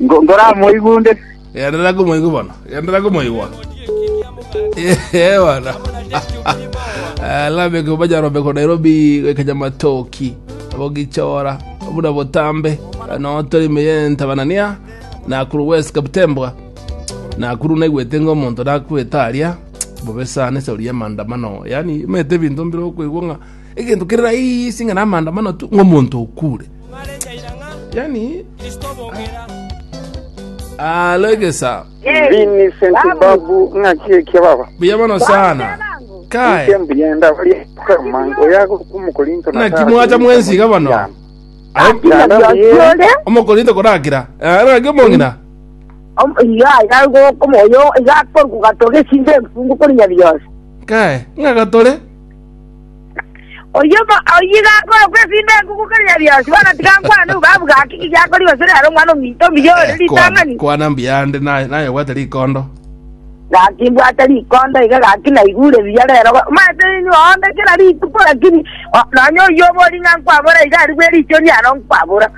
Ngo- ngoramoigwe onde? Genderera komoigwa bono. Genderera komoigwa. Eh, bono. Eh, Lameck Omanyarombe ko Nairobi goikanya matoki bogichora buna botambe no tori meye ntabanania nakuru west kaptembwa nakuru naigwete ngo omonto nakwete aria bobe sana esauri ya maandamano yani mete ebinto mbire okoigwa ng'a Egento kere raisi ng'a namandamano tu ng'omonto okure. Yani alo egesa. Vincent Babu ng'aki ekia baba. Buya bono sana. Kae. Isembu yenda bali kama oyago kumukorinto na. Naki mwacha mwensi iga bono. Omokorinto korakira. Eh, naki omong'ina. Kae. Ng'a gatore. Oyio mo- oyio iga akora kwesinde enkuku kare ya bionsi, bono tiga nkwane obobabu gake ki giakorire gose nere omwana ominto omuya ore Eh, kwana- ritang'ani. kwana mbuyande naye naye obwate rikondo Gaki mbwate rikondo iga gaki naigure buya rero. Omanyete inwe onde kera rituko lakini o- nonye oyio obori ng'a nkwabora iga arigwe erichio riaro nkwabora.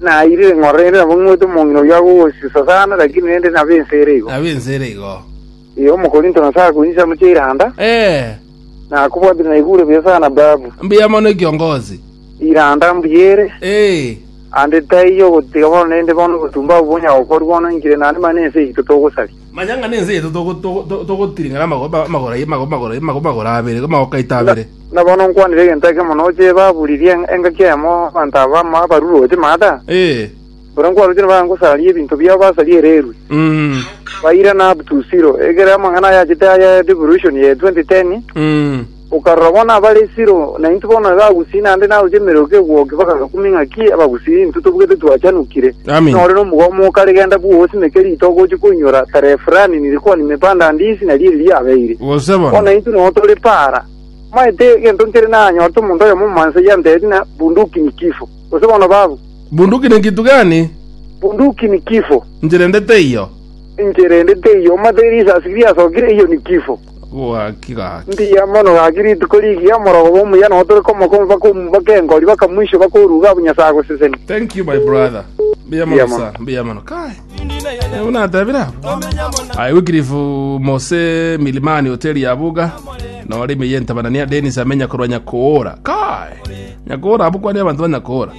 Nairire ng'orore ere nabo ng'wete omong'ina oyio agogosiswa sana, lakini rende nabe ense ere igo. Nabe ense ere igo. Ee, Omokorinto nase akoinsa amo chia iranda, Ee, nakobwatire naigure buya sana babu. mbuya mono ekiongozi. Iranda mbuya ere, Ee, aande taiyo, gotiga bono rende bono obotumba obwo bonya gokorwa bono inkire naende, mani nense yaito togosaria. Manya ng'a nense yaito togotiring'ana amagoro aye magoro abere, amagoko aito abere. Na bono nkwanire egento eke mono oche baburirie engaki eyemo abanto aba abaruroche maata, mbora nkwarutie nibaye ngosaria ebinto biabo basarie ererwe, bairane up to zero. Ekere amang'ana ayachete aya Devolution ye 2010, Okarora bono abare Silo, na intwe bono iga agusii naende nagochia emerogo egwoki, bakaga kumia ng'aki, Abagusii, intwe tobugete twachanukire. Amen. Nore nomogomo okarigenda bwo osimeke ritogo gochia koinyora tara Efurani, ni rikoni mepanda ndiisi, nari eri riabeire. Gose bono. Bono intwe nigo tore para. Maete egento nkere nanyorete omonto oyomo omomansa yantebetie ng'a bunduki ni kifo. Gose bono babu, Bunduki ni kintu gani? bunduki ni kifo. Ncherende teiyo. Ncherende teiyo. Omate risasi riasokire, eyio ni kifo. gaki gaki. Mbuya mono gaki rituko rigiya omorogoba omuya nogo tore komoka omo bakomumba kengori bakamuiswa bakoruga abwo Nyasae agosesenia. Thank you my brother. Mbuya mono Mbuya mono. sa, mbuya mono. Kai. Ebu natebire abo. Aye Wycliffe Mose Milimani hoteli ya Buga. Nore ime yentabana nia Dennis amenya korwa Nyakoora. Kai. Nyakoora abukwa ni abantu ba Nyakoora.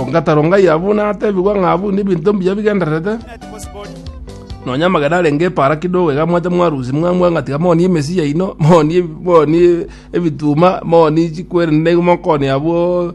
ongataro ngai abwo natebigwa ng'a abwo nebinto mbuya bigendererete nonya amagena arenge epara kidogo iga mwete mwarusi mwamua ng'a tiga monie emesi yaino monie monie ebituma monie chikwere nigo mokooni abwo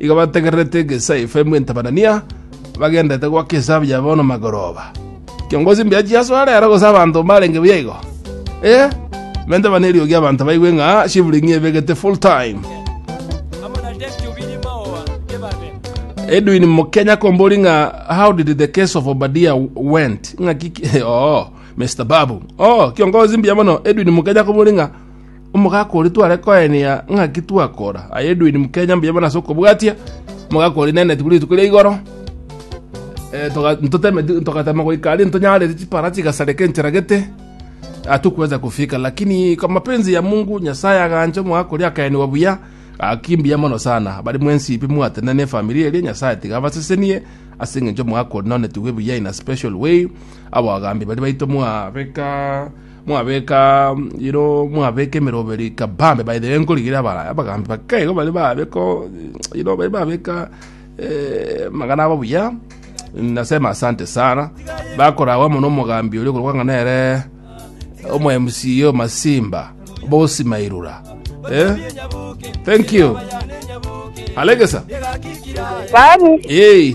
Igo bategererete egesaai Efraimu Entabarania, bagenderete goaka esabu ya bono magoroba. Kiongozi mbuya chiaso are aro gose abanto mbarenge buya igo? Eh, benta bane eriogi abanto baigwe ng'a chiburing'ia ebegete full time. Edwin Mukenya kombori ng'a how did the case of Obadia went? Ng'a ki oh, Mr. Babu. Oh, kiongozi mbuya mono Edwin Mukenya kombori ng'a Omogaka oria tware koenea ng'aki twakora. Aye Edwin Mkenya mbuya mono ase okobwatia. Omogaka oria nene tiburi rituko ria igoro. Eh, toga- ntoteme togatema goika aria ntonyarete chipara chigasareka enchera gete atukuweza kufika lakini kwa mapenzi ya mungu nyasaye agancha omogaka oria akaenewa buya gaki mbuya mono sana bari mwensi pi mwatene ne efamilia eria nyasaye tiga abasesenie ase eng'encho omogaka oria nonetigwe buya in a special way abagambi bari baito mwabeka Mwabeka iro mwabeka emeroberi kabambe by the way nkorigire abara abagambi baka igo bare babeka iro bare babeka eh, magana abo buya nasema asante sana bakorawa mono omogambi oria okorwa ng'a nere omo MC yo masimba bosi mairura eh? thank you alegesa Babu, hey.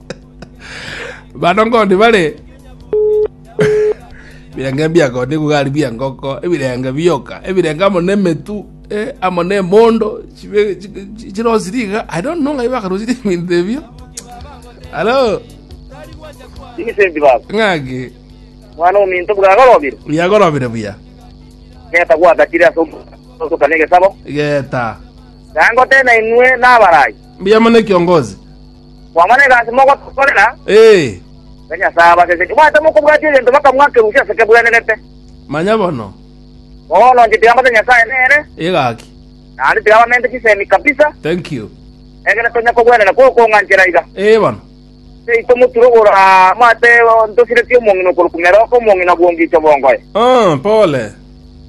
Bano ngondi bare ebirenga mbia ngondi igo gari bia ngoko ebirenga bioka ebirenga amo na emetu eh, amo na emondo chibe- chi- chi- chirosiri iga i don't know ng'ai bakarosiri ebinto ebio alo Vincent baba ng'aki mwana ominto bwagorobire biagorobire buya geta gwatakire ase omotoka negesabo geta nango tena inwe nabarayi mbuya mono ekiongozi Kwamana egasi mogotokorera Ee, ere Nyasae abasesenye. Omanyete mokobwatia egento mpaka mwakerusia ase kebwenerete. manya bono. Bono inche tiga mbase Nyasae nere, Ee, gaki. naende tiga bamente chisemi kabisa, Thank you. egere tonya kogwenera kwo kong'anchera iga. Ee, bono. Seito moture ogoro aa, omanyete ntosiretie omong'ina okorokwa Meroka, omong'ina bw'ongicho bw'ongoye. Oh, pole.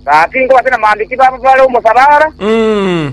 Gaki, nkobase na maambiki babo bare omosabara. Mm.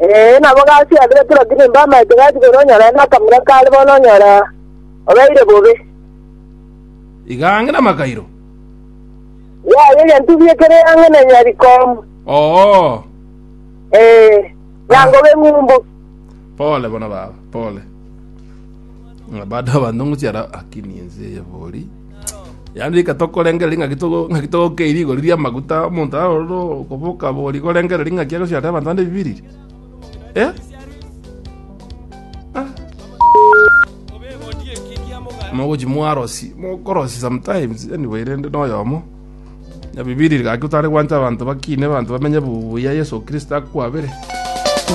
Ee, nabo gasi yabetwe, lakini mbamaete gasi bono onyore aye nakamura kare bono onyore obeire bobe. Iga ang'e namakairo. Yaye egento biekere ang'e na nyarikomu. Oo. Ee, nyango beng'umbu. Pole bono baba, pole. Ng'a bado abanto ngochiara akini ense eyebori. Yaani rika tokorengereria ng'aki togokeirie rigori ri'amaguta omonto aroro okoboka bo rigorengereria ng'aki agochiera abanto bande ebibiiri? Eh? Ah. Mogochi mwarosi, mokorosi sometimes anyway rende noyomo. Ebibiiri gaki otare gwancha abanto bakine abanto bamenye buya Yeso Kristo akwabere.